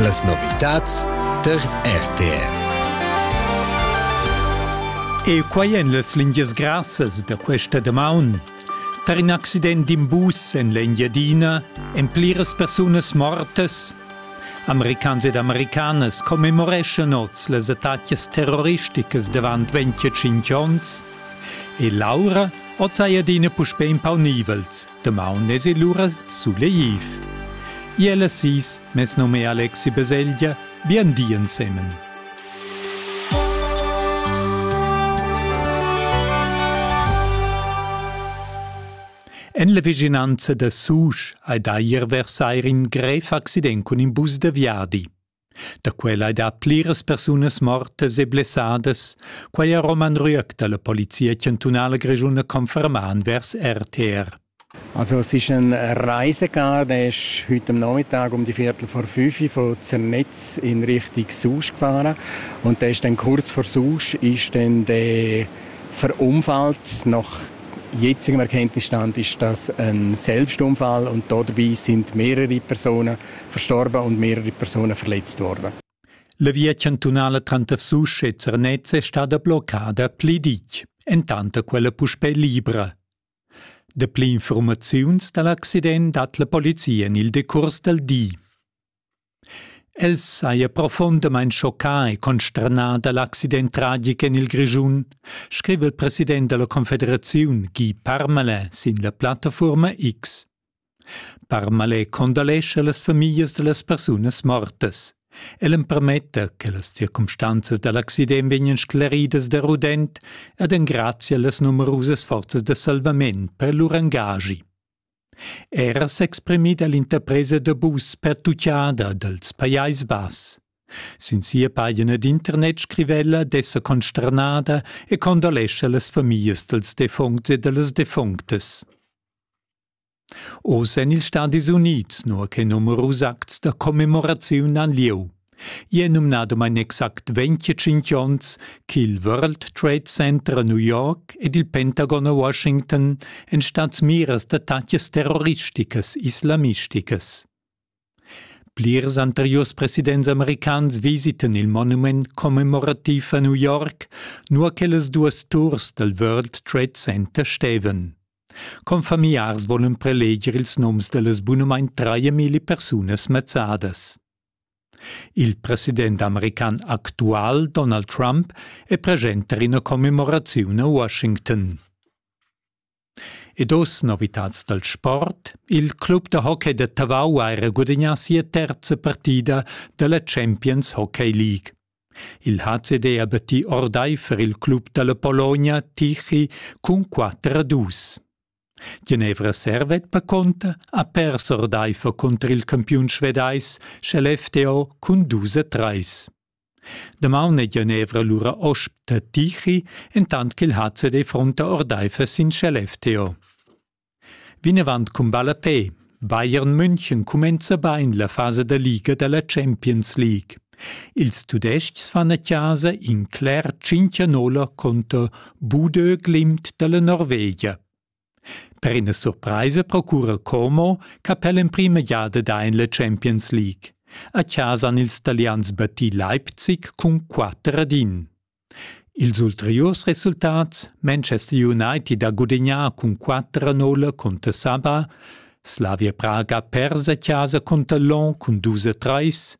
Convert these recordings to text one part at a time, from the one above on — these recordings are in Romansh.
Las novitads tar RTR. E quai en las lingias grassas da questa damaun. Tar in accident d'in bus en l'Engiadina èn pliras persunas mortas. Americans ed americanas commemoreschan oz las attacas terroristicas davant 25 onns e Laura oz hai adina puspè in pau nivels Damaun es el lura sulegliv. Iel es sis, mes nom è Alexi Beseglia, bien di ensemen. En la vicinanza da Susch hai da ier versair in grev accident cun in bus da viadi. Da quella ei dat pliras persunas mortas e blessadas. Quei ha Roman Rüegg dalla Polizia chantunala grischuna confermà envers RTR. Also es ist ein Reisecar, der ist heute am Nachmittag um die Viertel vor fünf von Zernetz in Richtung Susch gefahren und der ist dann kurz vor Susch ist dann der verunfallt. Nach jetzigem Erkenntnisstand ist das ein Selbstunfall und dabei sind mehrere Personen verstorba und mehrere Personen verletzt worden. La via chantunala tranter Susch e Zernez è stada bloccada pli ditg, entant quella puspè libra. Dapli informaziuns da l'accident dat la polizia en il decurs dal di. El saja profundamain schoccà e consternà da l'accident tragic en il Grischun, scriva il president della Confederazione Guy Parmala sin la plattaforma X. Parmalet condolescha las famiglias da las persunas mortas. El empermetta che las circumstanzas da l'accident vegnan scleridas da rudent ed engrazia las numerusas forzas da salvament per lur engagi. Era s'exprimit all'interpresa da bus per tucciada dals Pajais Bass. Sin sia pagina d'internet scriva ella d'esser consternada e condolescha las famiglias dals defuncts e da las defunctas. Oz èn ils Stadis Unids nua che numerus acts da commemoraziun han lieu. I è numnadamain exact 25 onns ch'il World Trade Center a New York ed il Pentagon a Washington èn stads miras d'attacas terroristicas islamisticas. Plirs anteriurs presidents americans visitan il monument commemorativ a New York, nua che las duas turs dal World Trade Center stevan. Confamiars volan preleger ils noms da las bunamain traemilli persunas mazzadas. Il president american actual Donald Trump è present tar ina commemoraziun a Washington. E dos novitads dal sport. Il club da hockey da Tavau ha era gudagnà sia terza partida da la Champions Hockey League. Il HCD ha battì ordaifer il club da la Pologna Tichy cun 4 a 2. Genevra Servet Paconta ha pers ordaifer cunter il campiun svedais sche l'FTO cun 2 a 3. Damaun ei Genevra lura osp da Tichy, entant ch'il hazet ei frunta ordeifer sin Skellefteå. Vinavant cun ballapè. Bayern München cumenza bain la fasa da liga dalla Champions League. Ils tudestgs fan a casa in cler 5 conter Budö Glimt dalla Norvegia. Per ina surpraisa procura Como che per l'emprima giada da en la Champions League. A chasa han ils talians battì Leipzig cun 4 ad 1. Ils ulteriurs resultats Manchester United ha gudagnà cun 4 a 0 conter Saba, Slavia Praga persa a chasa conter Lon cun 2 a 3,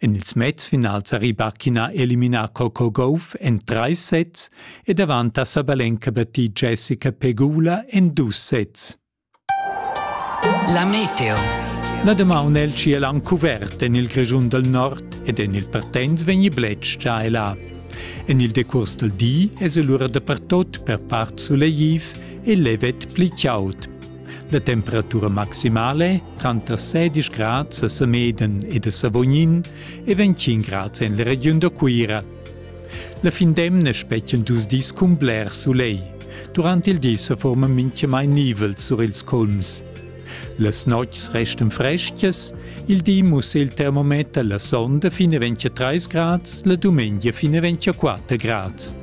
En ils mezfinals ha Rybakina eliminà Coco Gauff en trais sets ed avanti a Sabalenka battì Jessica Pegula en dus sets. La meteo. La damaun è il ciel han cuvert en il Grischun dal nord ed en il Partenz vegni bletsch già e là. En il decurs dal di es el ura dapertot per part sulegtiv e levet pli chaud. La temperatura maximale tranter 16 grads a Semeden ed a Savognin e 25 grads en la regiun da Cuira. La fin d'emna spetgan dus dis cun bler sulegl. Durant il di sa forma mintgamai nivel sur ils culms. Las notgs restan frescas, il di mussa il termometer la sonda fino 23 grads, la dumengia fino 24 grads.